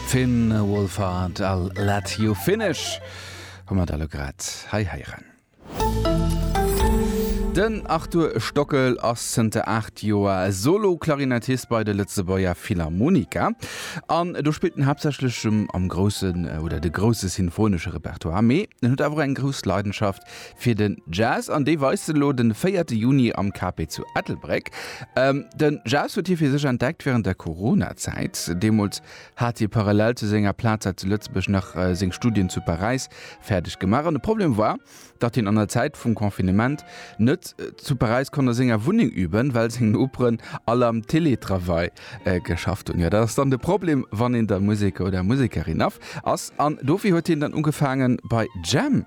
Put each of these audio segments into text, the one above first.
Finn Wolfhard, I'll let you finish hu mer da lo grad hei héieren. Den Arthur Stockel ass zënter 8 Joer Solo-Klarinettist bei de Lëtzebuerger Philharmoniker. An do spillt en haaptsächlech am groussen oder de grousse sinfonesche Repertoire, mee en huet awer och eng grouss Leidenschaft Fir den Jazz, an dee weist se elo den véierte Juni am KP zu Ettelbréck. Den Jazz huet hie fir sech entdeckt wärend der Corona-Zäit. Deemools hat hie parallel zu senger Plaz hei zu Lëtzebuerg nach seng Studien zu Paräis fäerdeg gemaach. An de Problem war, datt hien an der Zäit vum Confinement net zu Paräis konnt a senger Wunneng üben, well seng Noperen all am Télétravail geschafft hunn. Jo, dat ass dann de Problem, wann een da Museker oder Musekerin ass. An dofir huet hien dann ugefaangen bei Jam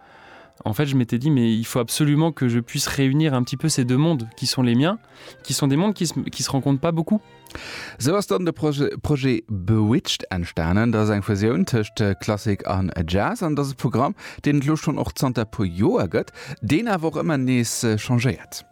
En fait, je m'étais dit, mais il faut absolument que je puisse réunir un petit peu ces deux mondes qui sont les miens, qui sont des mondes qui se, qui se rencontrent pas beaucoup. Sou ass dann de Projet, Projet Bewitched entstanen. Dat ass eng Fusioun tëscht Klassik an Jazz. An et ass e Programm, deen et elo schonn och zanter e puer Joer gëtt, deen awer och ëmmer nees changéiert.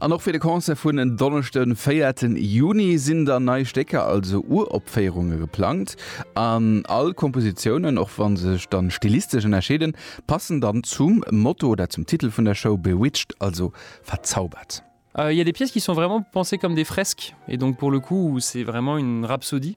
An och fir de Concert vun en Donneschde den 4 ten Juni sinn dann nei Stécker, also Uropféierunge geplangt. An all Kompositiounen, och wann se sech dann stilistesch ënnerscheeden, passen dann zum Motto oder zum Titel vun der Show, Bewitched, also verzaubert. Il y a des pièces qui sont vraiment pensées comme des fresques et donc pour le coup c'est vraiment une rhapsodie.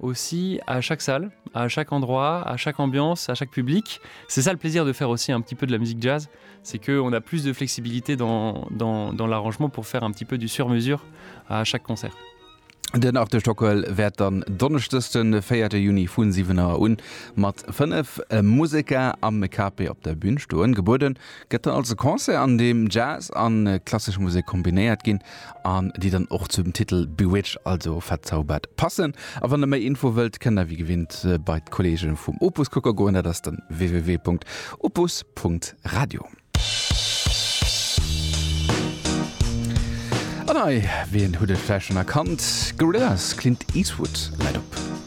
aussi à chaque salle, à chaque endroit, à chaque ambiance, à chaque public. C'est ça le plaisir de faire aussi un petit peu de la musique jazz, c'est qu'on a plus de flexibilité dans, dans, dans l'arrangement pour faire un petit peu du sur-mesure à chaque concert. Den Art de Stockwell wäert dann Donneschdes den 4 Juni vun 7 Auer un mat 5 Museker am Capé op der Bühn stoen. Gebueden gëtt dann also Concert an deem Jazz an klassesch Musek kombinéiert ginn. an déi dann och zu dem Titel Bewitched, also Verzaubert, passen. A wann der méi Info wëllt, kënnt der wéi gewinnt bei d'Kolleege vum Opus kucke goen, dat ass dann www.opus.radio. An hei, wien huet et vläicht schonn erkannt, Gorillaz, Clint Eastwood läit op.